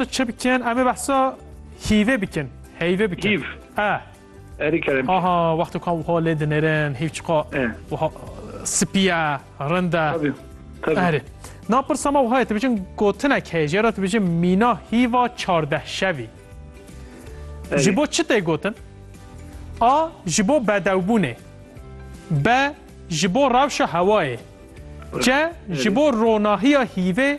Çi bikin? Em ê behsa hîvê bikin. Heyvê bikin. Hîv. E. Erî kerem. Aha, wextê ku em wiha lê dinêrin, hîv çiqa wiha spî ye, rind e. Tabii. Tabii. Erê. Na pirsa me wiha ye, tu bicin gotinek heye, jê re tu bicin mîna hîva çardeh şevî. Ji bo çi tê gotin? A. Ji bo bedewbûnê. B. Ji bo rewşa hewayê. C. Ji bo ronahiya hîvê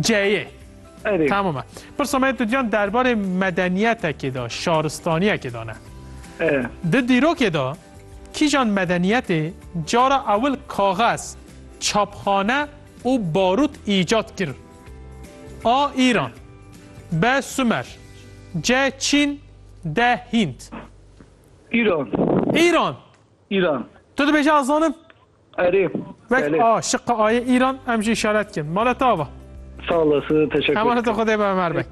C'yê. Erê. Tamam e. Pirsa me tu diyan derbarê medeniyetekê de, şaristaniyekê de ne. E. Di dîrokê de kîjan medeniyetê cara ewil kaxez, çapxane û barût îcat kir? A. Îran B. Sumer C. Çîn D. Hînd. Îran. Îran. Îran. Tu dibêje ez zanim? Erê. Wek a şiqa ayê Îran em jî işaret kin. Mala ta va. Sağ olasın. Teşekkür. Emanet Xudê be Ömer Bey.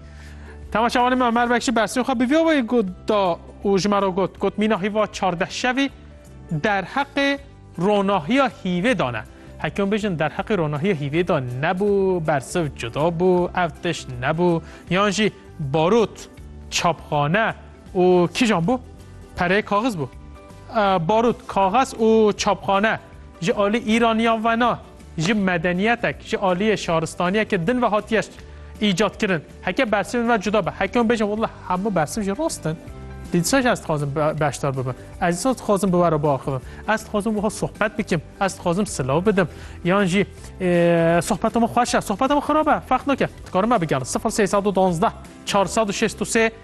Temaşa wanê me Ömer Bey şi bersê xwe bi vîyo wê got da û ji me re got got mîna hîva çardeh şevî derheqê ronahiya hîvê da ne. Hekim bijin derheqê ronahiya hîvê da nebû bersiv cuda bû ev tiş nebû yan jî barot çapxane û kîjan bû pereyê kaxiz bû. Barût, kaxez û çapxane ji alî Îraniyan ve ne, ji medeniyetek, ji aliyê şaristaniyekê din ve hatiye îcat kirin. Heke bersivên ve cuda be. Heke hûn bêjin wela hemû bersiv jî rast in, lê dîsa jî ez dixwazim beşdar bibim. Ez dîsa dixwazim bi we re biaxivim. Ez dixwazim wiha sohbet bikim, ez dixwazim silav bidim. Yan jî sohbeta me xweş e, sohbeta me xirab e, ferq nake. Dikarim me bigerin sifir sê sed û duwazdeh çar sed û şêst û sê.